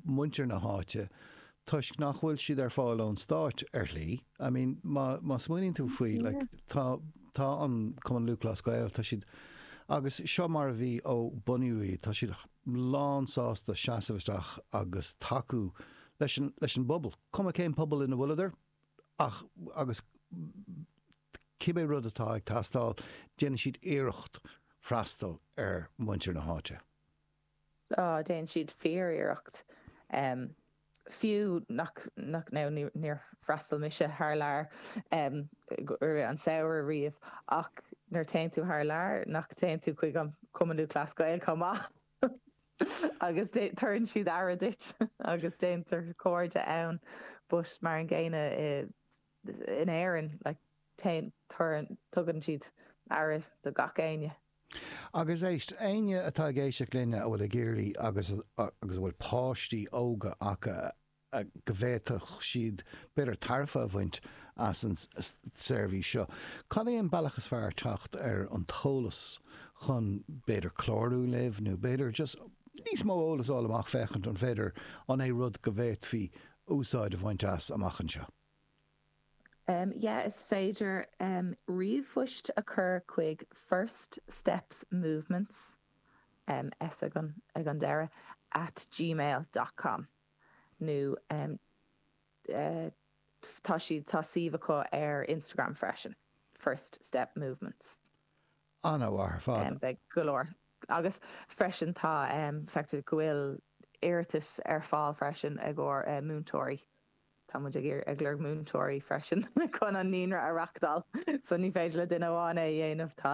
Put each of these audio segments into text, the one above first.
muintir na háite toisc nach bhfuil siad ar fáil ón stáit ar shlí. I mean má má smaoiníonn tú faoi like tá tá an Cumann Lúthchleas Gael tá siad agus seo mar a bhí ó bunaíodh iad tá siad lán sásta seasamh isteach agus tacú leis an leis an bpobal cuma cén pobal ina bhfuileadar ach agus cibé rud atá ag teastáil déanann siad iarracht freastal ar muintir na háite. Déanann siad fíor-iarracht, fiú nach, nó níor fhreastail mise thar lear, ar an samhradh riamh, ach nuair téann tú thar lear, nach dtéann tú chuig an Cumann Lúthchleas Gael chomh maith agus tugann siad aire duit agus déantar cairde ann, but mar an gcéanna, in Éirinn, téann, cuireann, tugann siad aire do gach aon duine. Agus éist, éinne atá ag éisteacht linn a bhfuil ag iarraidh agus agus a bhfuil páistí óga acu a go bhféadfadh siad b'fhéidir tairbhe a bhaint as an tseirbhís seo, cad é an bealach is fearr teacht ar an t-eolas chun b'fhéidir clárú libh nó b'fhéidir just níos mó eolas a fháil amach féachaint an féidir, an é rud go bhféadfaí úsáid a bhaint as amach anseo? yeah is féidir ríomhphoist a chur chuig first steps movements s ag an deireadh at gmail dot com nó tá siad tá suíomh acu ar instagram freisin first step movements an-mhaith ar fad beidh go leor agus freisin tá feictear go bhfuil iarratas ar fáil freisin i gcomhair múinteoirí. Tá muid ag iarraidh ag lorg múinteoirí freisin chun an naíonra a reachtáil. So ní féidir le duine amháin é a dhéanamh. Tá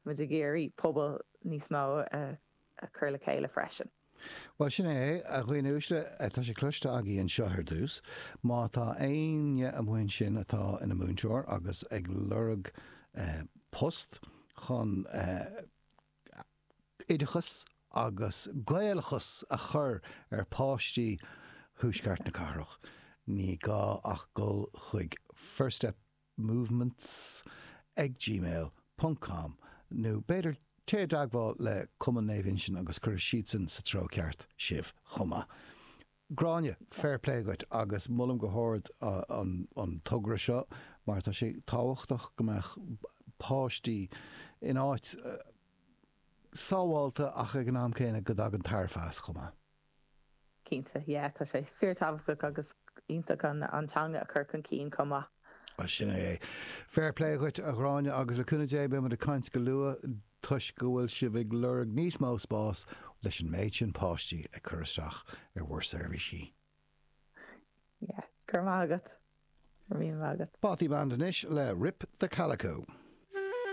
muid ag iarraidh pobal níos mó a chur le chéile freisin. Bhuel, sin é é, a dhaoine uaisle, tá sé cloiste agaibh anseo ar dtús, má tá éinne amuigh ansin atá ina múinteoir agus ag lorg post chun eh, oideachas agus Gaelachas a chur ar pháistí thuaisceart na cathrach. Ní gá ach dul chuig First Step Movements ag gmail ponc com nó b'fhéidir téigh i dteagmháil le Cumann Naomh Uinseann agus cuirfidh siadsan sa treo ceart sibh chomh maith. Gráinne, Fair play dhuit agus molaim go hard an togra seo mar tá sé tábhachtach go mbeadh páistí in áit sábháilte ach ag an am céanna go dtagann tairbhe as chomh maith. Cinnte, yeah tá sé fíor tábhachtach agus iontach an teanga a chur chun cinn chomh maith. Bhuel sin é é. Fair play dhuit a Ghráinne agus le cúnamh Dé beimid ag caint go luath. toisc go bhfuil sibh ag lorg níos mó spáis leis an méid sin páistí ag cur isteach ar bhur seirbhísí. Yeah, go raibh maith agat. Go raibh míle maith agat. Bothy Band anois le Rip the Calico.